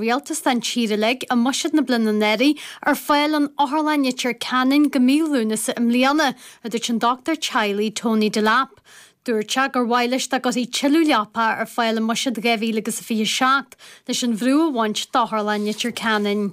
Rialtas don tír uilig i mbuiséad na bliana anuraidh ar fáil in Otharlann Leitir Ceanainn go mí Lúnasa i mbliana, a dúirt an dochtúir teaghlaigh Tony Delap. Dúirt sé gur mhaith leis dá gcuirfí tuilleadh leapa ar fáil i mbuiséad 2000 agus a 27 leis an bhrú a bhaint d'Otharlann Leitir Ceanainn.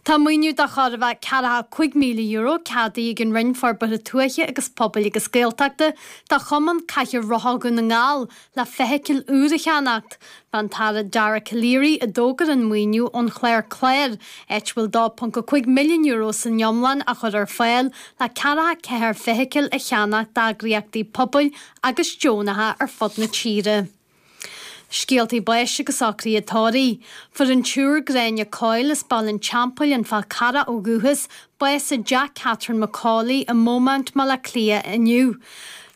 Tá maoiniú de chóir a bheith €45000 ceadaithe ag an Roinn Forbartha Tuaithe agus Pobail agus Gaeltachta do Chumann Cathaoir Rotha Dhún na nGall le feithicil úr a cheannacht. An tAire Dara Calleary a d'fhógair an maoiniú ón chlár CLÁR, áit a bhfuil €2.5 milliún san iomlán á chur ar fáil le 44 feithicil a cheannacht d'eagraíochtaí pobail agus deonacha ar fud na tíre. Scéaltaí báis agus socruithe tórraimh. Fuair an tSiúr Gráinne Coyle as Baile an Teampaill, An Fál Carrach ó dhúchas, bás i dteach Catherine McCauley i mBeaumont, Baile Átha Cliath inniu.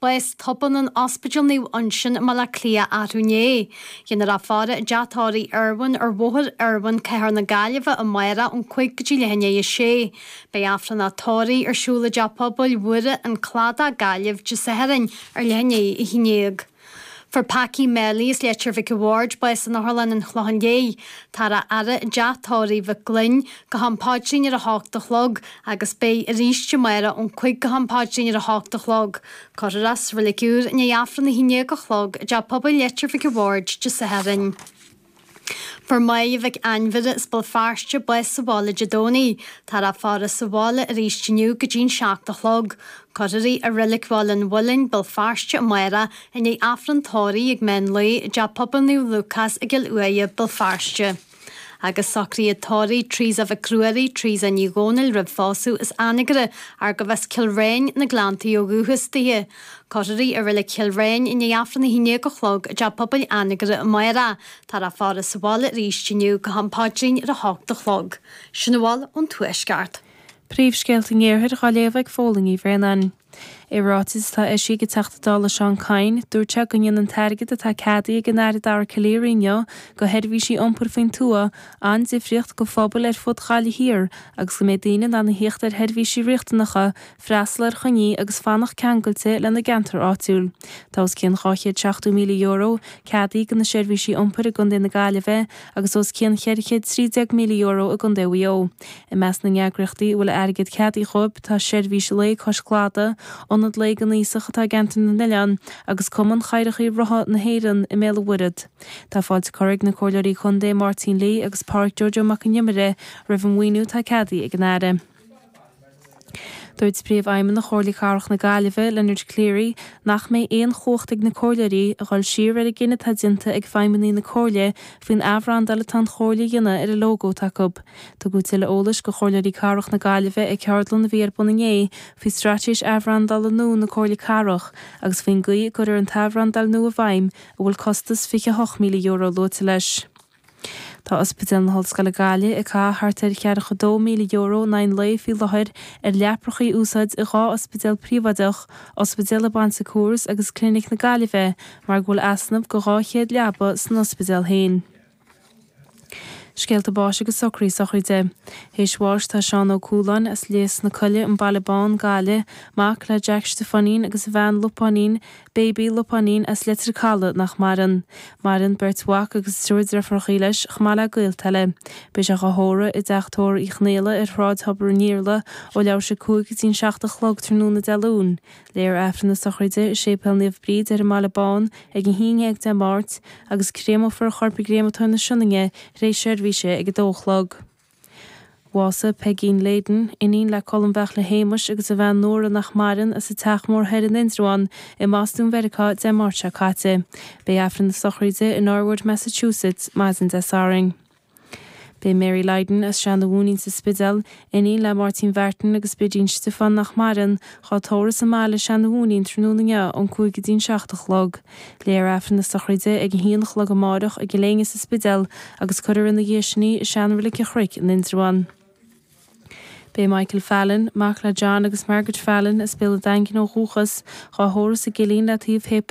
Bás tobann in Ospidéal Naomh Uinseann i mBaile Átha Cliath arú inné. Dhéanfar a faire i dteach tórraimh Irwin ar Bhóthar Irwin, Cathair na Gaillimhe amárach ón cúig go dtí leath i ndiaidh a sé. Beidh Aifreann a tórraimh ar siúl i dTeach Pobail Mhuire, An Cladach, Gaillimh, Dé Sathairn ar leath i ndiaidh a h-aon déag. Fuair Packie Melly as Leitir Mhic a Bhaird bás in Otharlann an Chlocháin Léith. Táthar á fhaire i dTeach Tórraimh Mhig Fhloinn go ham paidrín ar a h-ocht a chlog. agus beidh arís amárach ón cúig go ham paidrín ar a h-ocht a chlog. Cuirfear é sa reilig úr i ndiaidh Aifreann a h-aon déag a chlog i dTeach Pobail Leitir Mhic a Bhaird Dé Sathairn. Fuair Maedhbh Mhic Ainmhire as Béal Feirste bás sa bhaile Dé Domhnaigh. Táthar á faire sa bhaile arís inniu go dtí an seacht a chlog. Cuirfear í i Reilig Bhaile an Mhuilinn, Béal Feirste amárach i ndiaidh Aifreann Tórraimh ag meán lae i dTeach Pobail Naomh Lúcás i gCill Uaighe, Béal Feirste. Agus socruithe tórraimh Treasa Mhic Ruairí, Treasa Ní Dhomhnaill roimh phósadh as Anagaire arbh as Cill Réin, na Gleanntaí ó dhúchas daoithe. Cuirfear í i reilig Chill Réin i ndiaidh Aifreann a hAon Déag a Chlog i dTeach Pobail Anagaire amárach. Táthar á faire sa bhaile arís inniu go ham paidrín ar a hocht a chlog. Sin a bhfuil ón Tuaisceart. Príomhscéalta an Iarthair dhá léamh ag Póilín Uí Bhraonáin. I ráiteas atá eisithe ag an Teachta Dála Seán Kyne, dúirt sé go ndéanann an t-airgead atá ceadaithe ag an Aire Dara Calleary inniu do sheirbhísí iompair faoin tuath an-difríocht do phobail ar fud Ghaillimh Thiar agus go mbeidh daoine in ann a theacht ar sheirbhísí riachtanacha, freastal ar choinní agus fanacht ceangailte lena gceantar áitiúil. Tá os cionn €270,000 ceadaithe do na seirbhísí iompair i gContae na Gaillimhe agus os cionn €413,000 i gContae Mhaigh Eo. I measc na n-eagraíochtaí a bhfuil airgead ceadaithe dhóibh tá Seirbhís Lae Cois Cladaigh, Ionad Lae don Aosach atá i gceantar na nOileán agus Cumann Cathaoireachaí Rotha na hÉireann i mBéal an Mhuirthead. Tá fáilte curtha ag na Comhairleoirí Contae Máirtín Lee agus Páraic Joe Joe Mac an Iomaire roimh an maoiniú atá ceadaithe ag an Aire. Dúirt Príomhfheidhmeannach Chomhairle Cathrach na Gaillimhe, Leonard Cleary, nach mbeidh aon chumhacht ag na comhairleoirí a dhul siar ar an gcinneadh atá déanta ag feidhmeannaigh na Comhairle faoin athbhrandáil atá an Chomhairle a dhéanamh ar an lógó atá acu. Tugadh tuilleadh eolais go Chomhairleoirí Cathrach na Gaillimhe ag ceardlann a bhí ar bun inné faoi straitéis athbhrandála nua na Comhairle Cathrach agus faoin gcaoi a gcuirfear an t-athbhrandáil nua i bhfeidhm, a bhfuil costas €28,000 luaite leis. Tá Ospidéal na hOllscoile Gaillimh ag caitheamh thart ar cheathracha dó míle euro in aghaidh an lae faoi láthair ar leaprachaí a úsáid i dhá ospidéal príobháideach, Ospidéal an Bon Secours agus Clinic na Gaillimhe, mar go bhfuil easnamh go dhá chéad leaba san ospidéal féin. Scéalta báis agus socruithe sochraide. Théis bháis tá Seán Ó Cualáin, as Lios na Coille, An Baile Bán, Gaillimh, mac le Jack Stiofáinín agus a bhean Lupáinín, Baby, Lupáinín, as Leitir Caladh nach maireann. Maireann beirt mhac agus triúr deirfiúrachaí leis, chomh maith le gaolta eile. Beidh sé dhá thórramh i dTeach Tórraimh Uí Chonaola ar Shráid Thobar an Iarla ó leathuair théis a cúig go dtí an seacht a chlog tráthnóna Dé Luain, léifear Aifreann na sochraide i Séipéal Naomh Bríd ar an mBaile Bán ag a haon déag Dé Máirt agus créamófar a chorp i gCréamatóir na Sionainne tar éis seirbhíse ag a dó a chlog. Bhásaigh Peigín Lydon, iníon le Colm Bheairtle Shéamuis agus a bhean Nóra nach maireann, as an Teach Mór Thoir in Indreabhán i mBostún Mheiriceá Dé Máirt seo caite. Beidh Aifreann na Sochraide i Norwood, Massachusetts maidin Dé Sathairn. Beidh Mary Lydon as Seanadh Mhóinín sa Spidéal, iníon le Máirtín Mhartin agus Bidín Stiofán nach maireann, dhá tórramh sa mbaile i Seanadh Mhóinín tráthnóna inniu ón cúig go dtí'n seacht a chlog. Léifear Aifreann na sochraide ag a haon a chlog amáireach i gCill Éinne sa Spidéal agus cuirfear ina dhiaidh sin í i seanreilig an Chnoic in Indreabhán. Beidh Michael Fallon, mac le John agus Margaret Fallon, as Béal a' Daingin ó dhúchas, dhá thórramh sa gCillín le taobh Shéipéal